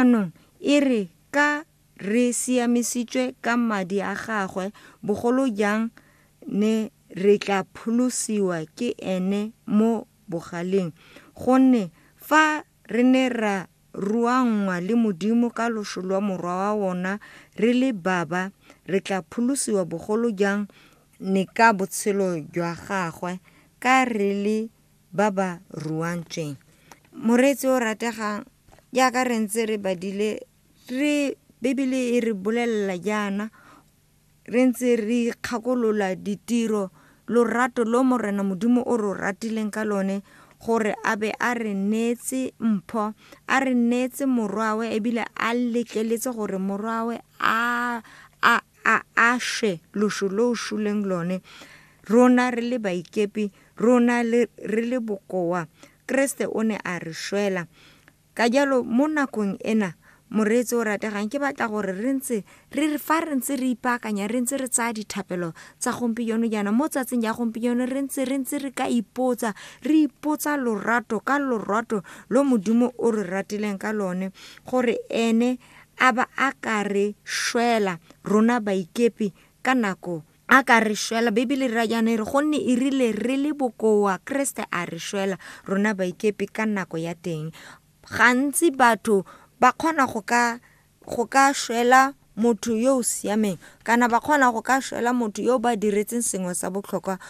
Jaanong e re ka re siamisitswe ka madi a gagwe, bogolo jang ne re tla pholosiwa ke ene mo bogaleng. Gonne fa re ne ra ruanngwa le Modimo ka loso lwa Morwa wa ona re le baba, re tla pholosiwa bogolo jang ne ka botshelo jwa gagwe ka re le ba ba ruantsweng. Moreetsi o rategang, jaaka re ntse re badile re Bibele e re bolelela jaana re ntse re ikgakolola ditiro lorato lo Morena Modimo o ro ratileng ka lone gore a be a re neetse mpho a re neetse morwawe ebile a letleletse gore morwawe a a a a shwe loso lo o shuleng lone, rona re le baikepi, rona le, re le bokoa. Keresete o ne a re shwela. Ka jalo, mo nakong ena, moreetsi o rategang ke batla gore re ntse re fa re ntse re ipaakanya re ntse re tsaya dithapelo tsa gompieno jaana mo tsatsing ya gompieno re ntse re ntse re ka ipotsa re ipotsa lorato ka lorato lo modimo o re ratileng ka lone gore ene a ba a ka re swela rona baikepi ka nako a ka re swela bibele ra jaana e re gonne e rile re le bokoa keresete a re swela rona baikepi ka nako ya teng gantsi batho ba kgona go ka go ka swela motho yo o siameng kana ba kgona go ka swela motho yo ba diretseng sengwe sa botlhokwa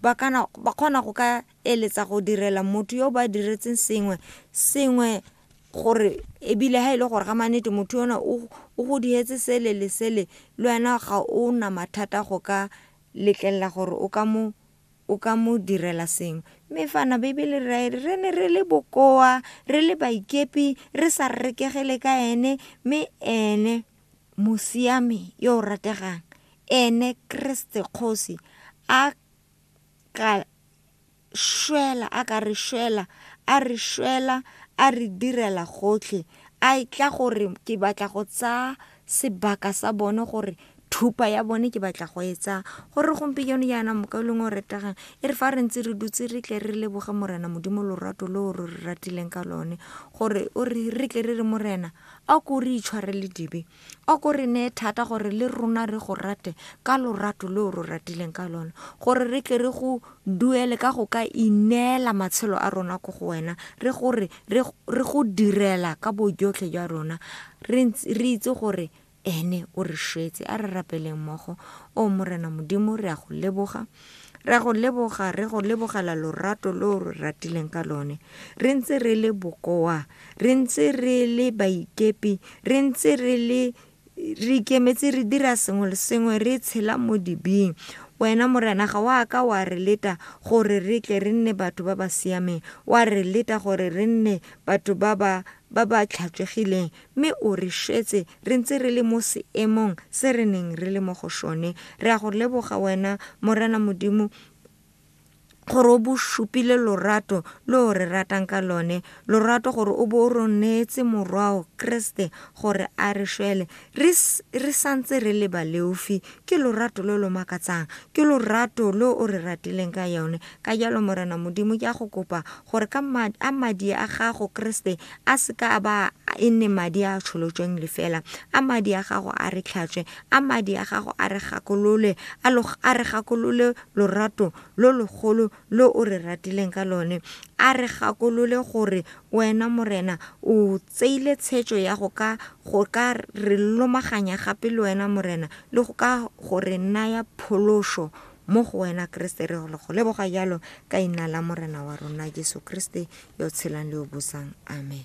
ba kgona go ka eletsa go direla motho yo ba diretseng sengwe sengwe gore ebile ha e le gore ga manete motho yona o go dihetse sele le sele le wena ga o na mathata go ka letlelela gore o ka mo o ka mo direla sengwe mme fana bibele re re ne re le bokoa re le baikepi re sa rekegele ka ene mme ene mosiame yo o rategang ene kreste kgosi a ka šwela a ka re šwela a re šwela a re direla gotlhe a e tla gore ke batla go tsaya sebaka sa bone gore thupa ya bone ke batla go e tsaya gore gompieno jaana moka leng o retegang e re fa re ntse re dutse re tle re leboge morena modimo lorato lo re re ratileng ka lone gore o re re tle re re morena a ko re itshwarele dibe O ko re nee thata gore le rona re go rate ka lorato le o re ratileng ka lone, gore re tle re go duele ka go ka ineela matshelo a rona ko go wena, re go re re go direla ka bojotlhe jwa rona, re re itse gore ene o re shwetse. A re rapeleng mmogo. O Morena Modimo, re a go leboga. Re a go leboga, re go lebogela lorato lo o re ratileng ka lone. Re ntse re le bokoa, re ntse re le baikepi, re ntse re le re ikemetse re dira sengwe le sengwe re tshela mo dibing wena morena ga wa ka wa re leta gore re tle re nne batho ba ba siameng wa re leta gore re nne batho ba ba ba ba tlhatswegileng Mme o re šetse re ntse re le mo seemong se re neng re le mo go sone. Re a go leboga wena, Morena Modimo, gore o bo supile lorato lo o re ratang ka lone lorato gore o bo o ro neetse morwao kreste gore a re šwele re s- re santse re le baleofi ke lorato lo lo makatsang ke lorato lo o re ratileng ka yone ka jalo morena modimo ke a go kopa gore ka ma- a madi a gago kreste a se ka a ba e nne madi a a tsholotsweng lefela a madi a gago a re tlhatswe a madi a gago a re gakolole a lo- a re gakolole lorato lo logolo lo o re ratileng ka lone a re gakolole gore wena morena o tseile tshetso ya go ka go ka re lomaganya gape le wena morena le go ka go re naya pholoso Mo go wena Keresete re go leboga jalo ka ina la Morena wa rona Jesu Keresete yo tshelang le yo busang. Amen.